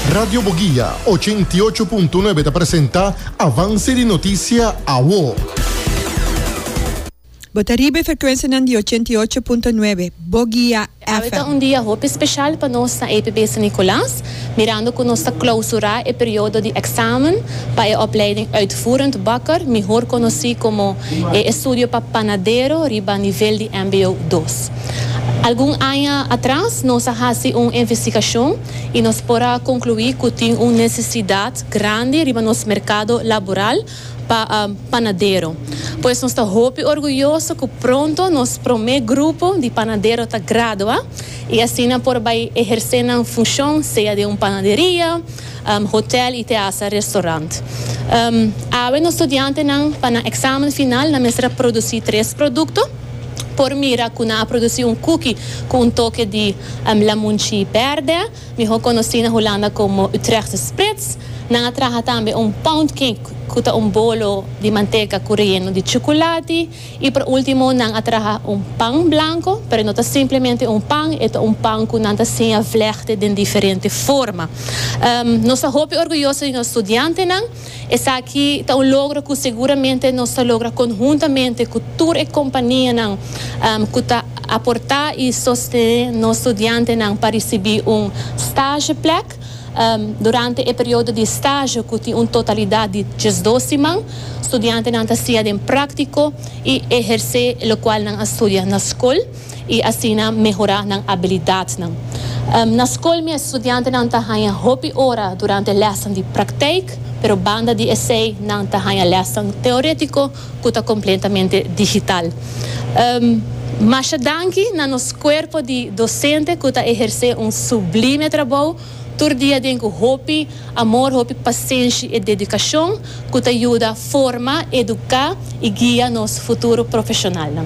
Radio Boguia, ochenta i ocho punto nuebe ta presenta Avance di Noticia Awo. Bo ta riba e frecuencianan di ochenta i ocho punto nuebe Boguia Awe ta un dia hopi special pa nos na APB San Nicolas, mirando cu nos ta clausura e periodo di examen pa e opleiding Uitvoerend Bakker, mihor conoci como e estudio pa panadero riba nivel di mbo dos. Algun aña atras nos a hasi un investigashon i nos por a konkluí ku tin un nesesidat grandi riba nos merkado laboral pa panadero. Pues nos ta hopi orguyoso ku pronto nos promé grupo di panadero ta gradua i asina por bai ehersé nan funshon sea den un panaderia, hotèl i te hasta restorant. Awe nos studiantenan pa nan eksamen final nan mester a produsí tres produkto. por mira cu nan a produci un cookie cu un toke di lamunchi berde, miho conoci na Hulanda como Utrechtse Spritz. Nan a traha tambe un poundcake cu ta un bolo di manteca cu reyeno di chuculati. Y pa ultimo nan a traha un pan blanco, pero no ta simplemente un pan, e ta un pan cu nan ta siña vlechte den diferente forma. Nos ta hopi orguyoso di nos studiantenan. Esaki ta un logro cu seguramente nos ta logra conhuntamente cu tur e companianan cu ta aporta y sostene nos studiantenan pa ricibi un stageplek durante e periodo di stage cu tin un totalidad di diesdos siman. Studiantenan ta siña den practico y eherce locual nan a studia na scol. i asina mehorá nan abilidatnan. Na skol mi e studiantenan ta haña hopi ora durante lèsnan di praktijk, pero banda di esei nan ta haña lèsnan teorétiko ku ta kompletamente digital. Masha danki na nos kuerpo di dosente ku ta ehersé un sublime trabou tur dia den ku hopi amor, hopi pasenshi i dedikashon ku ta yuda forma, eduká i guia nos futuro profeshonalnan.